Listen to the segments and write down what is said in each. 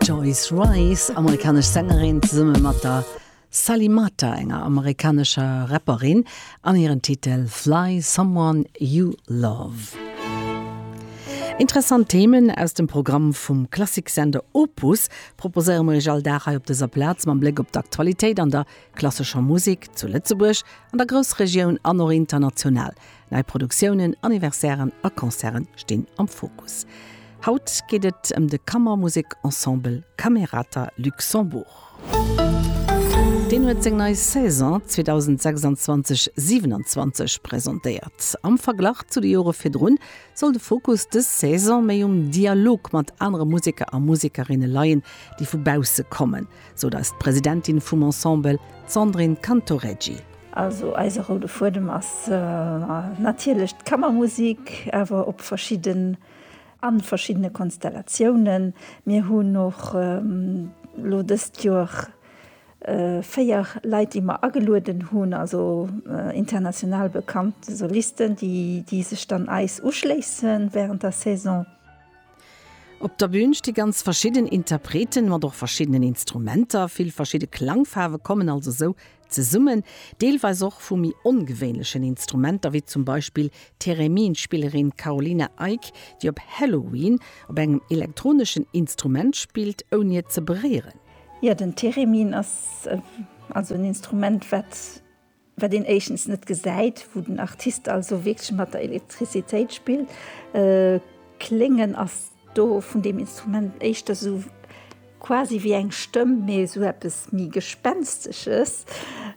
D'Joyce Wrice, amerikanesch Sängerin, zesumme mat der Sally Mata, enger amerikanescher Rapperin, an hiren Titel Fly Someone You Love. Interessant Themen aus dem Programm vum Klassiksender Opus proposéiere mir iech all Dag hei op dëser Plaz, mam Bléck op d'Aktualitéit an der klassescher Musek zu Lëtzebuerg, an der Groussregioun an och international. Nei Produktiounen, Anniversairen a Concerte stinn am Fokus. Haut geet et ëm de Kammermusek-Ensemble Camerata Luxembourg. Deen huet seng nei Saison 2026/27 presentéiert. Am Verglach zu de Jore virdrun soll de Fokus dës Saison méi um Dialog mat anere Museker a Musekerinne leien, déi vu bausse kommen, sou eis d'Presidentin vum Ensemble, d'Sandrine Cantoreggi. Also eise roude Fuedem ass natierlech d'Kammermusik, awer op verschidde a verschiddene Konstellatiounen. Mir hunn och elo dëst Joer véier Leit, déi mer agelueden hunn, also international bekannt Solisten, déi sech dann eis uschléisse während der Saison. Op der Bün sti ganz verschidden Interpreten, mat och verschiddenen Instrumenter. Vill verschidde Klangfaarwe kommen also esou Zesummen, deelweis och vu méi ongewéinlechen Instrumenter, wéi zum Beispill d'Theremin-Spillerin Carolina Eyck, déi op Halloween op engem elektroneschen Instrument spillt, ouni et ze beréieren. Jo, den Theremin ass also en Instrument, wat wat een éischtens net gesäit, wou den Artist also wierklech mat der Elektrizitéit spillt. Kléngen ass Do vun deem Instrument éischter esou quasi wéi eng Stëmm, mee esou eppes méi Gespenstesches.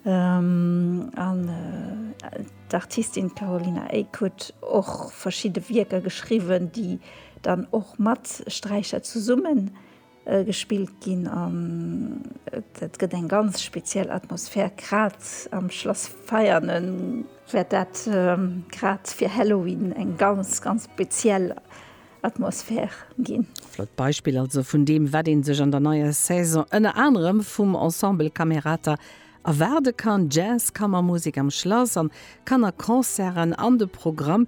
An d'Artistin d'Carolina Eyck huet och verschidde Wierker geschriwwen, déi dann och mat Sträicher zesummen gespillt ginn an et gëtt eng ganz speziell Atmosphär grad am Schlass Veianen, wäert dat grad fir Halloween eng ganz ganz speziell Atmosphär ginn. Flott Beispill also vun deem wat een sech an der neier Saison ënner anerem vum Ensemble Camerata Erwaarde kann, Jazz, Kammermusek am Schlass an Kannerconcerten an de Programm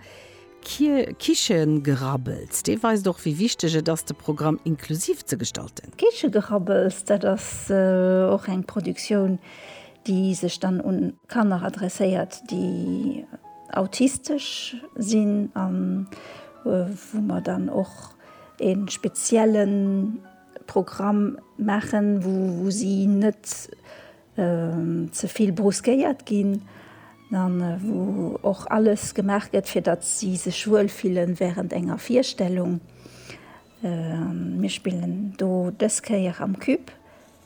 Kichegrabbels, dee weist och wéi wichteg et ass de Programm inklusiv ze gestalten. Kichegrabbels, dat ass och eng Produktioun déi sech dann un Kanner adresséiert déi autistesch sinn an wou mer dann och ee speziellen, Programm maachen, wou si net ze vill brusquéiert ginn an wou och alles gemaach gëtt, fir datt si sech wuel fillen während enger Virstellung. Mir spillen do dës Kéier am Cub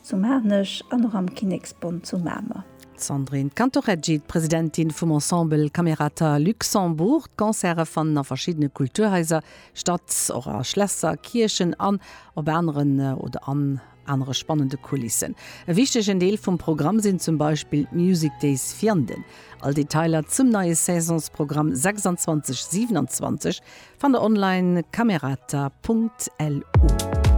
zu Maarnech an och am Kinneksbond zu Mamer. D'Sandrine Cantoreggi, d'Presidentin vum Ensemble Camerata Luxembourg. D'Concerte fannen a verschiddene Kulturhaiser Stadt, och a Schlässer, Kierchen an op aneren oder an anere spannende Kulissen. E wichtegen Deel vum Programm sinn zum Beispill d'Music Days Vianden. All Detailer zum neie Saisonsprogramm 26, 27 fannt der online, camerata.lu.